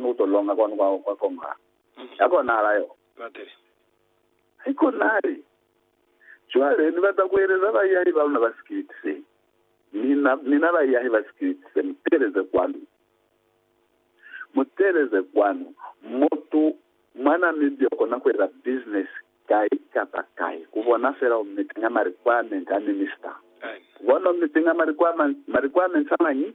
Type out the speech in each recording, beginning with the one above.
Mu to longa kwanu kwa kwa koma ya kona ala yo. Bateri. Hai konali. Cwale, Ni bata kueleza baiahi ba luna ba sikiliti se. Mina, mina baiahi ba sikiliti se, mu teeleze kwanu. Mu teeleze kwanu. Mutu mwa Namibia ukona kueza business kai kapa kai, ku bona fela u meetinga ma requirement a minister. Amen. Bona u meetinga ma requirement, ma requirements a mañi?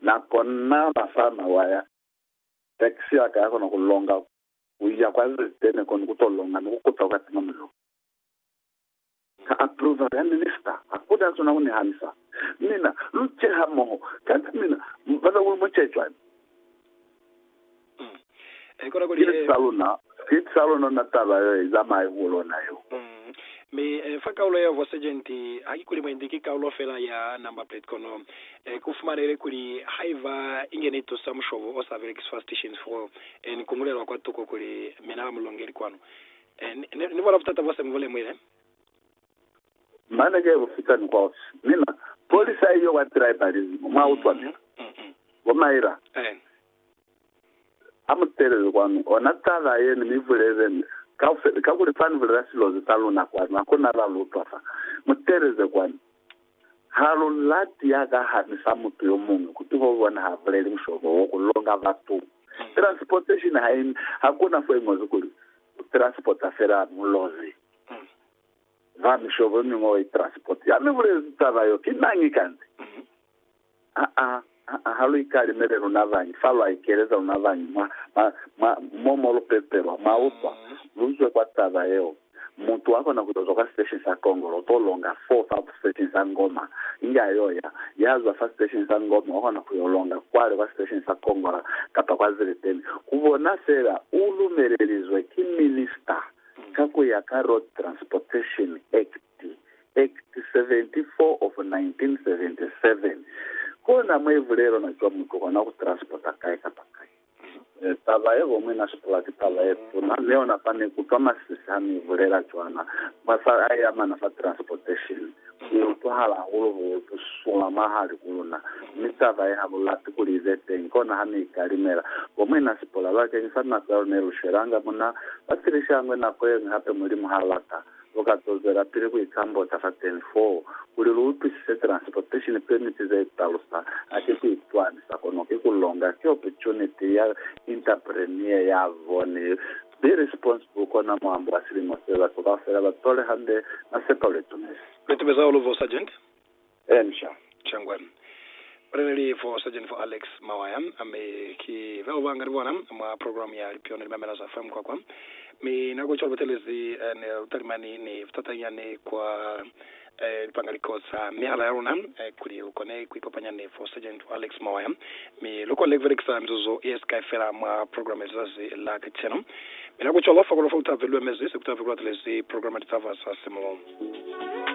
Na kona na sa na waya, tax ya ka ya kona ku longa ku ya kwa ze te ne koni ku to longa ni ku kuta kwa tima mulilo. Ka approval ya minister, ha ku na sona ku ni hanisa. Mina, lu ce hamoho, kanti mina, mpata kuli mu ce cwani? Sibili sa luna, Sibili sa luna na taba yo i zamai ku lona yo. Mi fa kaulo ya Vosejeniti, haki kuli mwendi ki kaulo fela ya number plate, kono ku fumanehile kuli haiba inge ni tusa mushobo o sa belekiswa stations fo ni kungulelwa kwa tuko kuli mina ba mulongeli kwanu. Ni bona butata bo se mu bu lemuhile? Mane ke bufitani kwa ofisi. Mina, polisa iyo wa tribalism, mwa utwa mina. Bo Myra, ha mu telele kwanu, ona taba ye ni mi bulezeni kaufela, kakuli fa ni bulela silozi sa luna kwanu, hakuna ba lu utwa fa. Mu teleze kwanu. Ha lu lati ya ka hami sa mutu yo muñwi, kuti ho bona ha buleli mushobo wo ku longa batu. Transportation ha i, hakuna fo i ñozi kuli, u transporta fela mulozi. Ba mishobo ye mingwe wa itransport ya mi bulezi taba yo ki mañi kanze? Aa, aa, ha lu ikalimele luna bañi, fa lwa ikeleza luna bañi mwa, mwa, mwa, mo, mo lu pepelwa. Mwa utwa? Lu zwe kwa taba yeo. Mutu wa kona ku yo zwa kwa sitesheni sa kongolo, u to longa foo fa sitesheni sa ngoma. Inge a yo ya, ya zwa fa sitesheni sa ngoma, wa kona ku yo longa kwale kwa sitesheni sa kongola, kapa kwa zileteni. Ku bona fela, u lumelelizwe ki minister. Ka ku ya ka Road Transportation Act, Act 74 of 1977, kona mwe bulelo na cwa mutu kona ku transporta kai kapa kai. Taba ye bo mwi na sipula ki taba ye tuna, mi ona fa ni kutwa masisi ha ni bulela cwana mwa fa ai amana fa transportation. Ki utwahala hahulu bu, bu suma mwahali ku luna, mi taba ye ha lu lati kuli i be teñi. Kona ha ne i ka limela. Bo Muina Sipora, bakeñisa lu nako ya luna ye lu swelanga mo na, ba pilishangwe nako yeñwi hape, Mulimu ha lata, lu ka to zwelapili ku ikambota fateni foo, kuli lu utwisise transportation permit ze talusa, ha ki ku itwamisa, kono ki ku longa, ki opportunity ya interpreneur ya bone. Be responsible kona mwambo wa silimo se, batu kaufela ba tole hande na sepa ule tumezi. Be tube za ulu for Sergeant. Encia. Chengwe. Baleleli for Sergeant for Alex Mawaya, mi ki bao ba nga li bona mwa program ya Lipyona Limamela za FM kwa kwa. Mi na ku cwalo batelezi ni lutalimani ni butata nyani kwa. lu panga liko za mihala ya luna kuli lu kone ku ikopanya ni Fosajeñi wa Lexmoya, mi lu kone ku belekisa mizuzu ye si kai fela mwa programa ya lizazi la kacenu. Mi na ku cwalo fa kolof'a lu ta ve lu emezi se ku ta ve ku latelezi programa Litaba za Simu.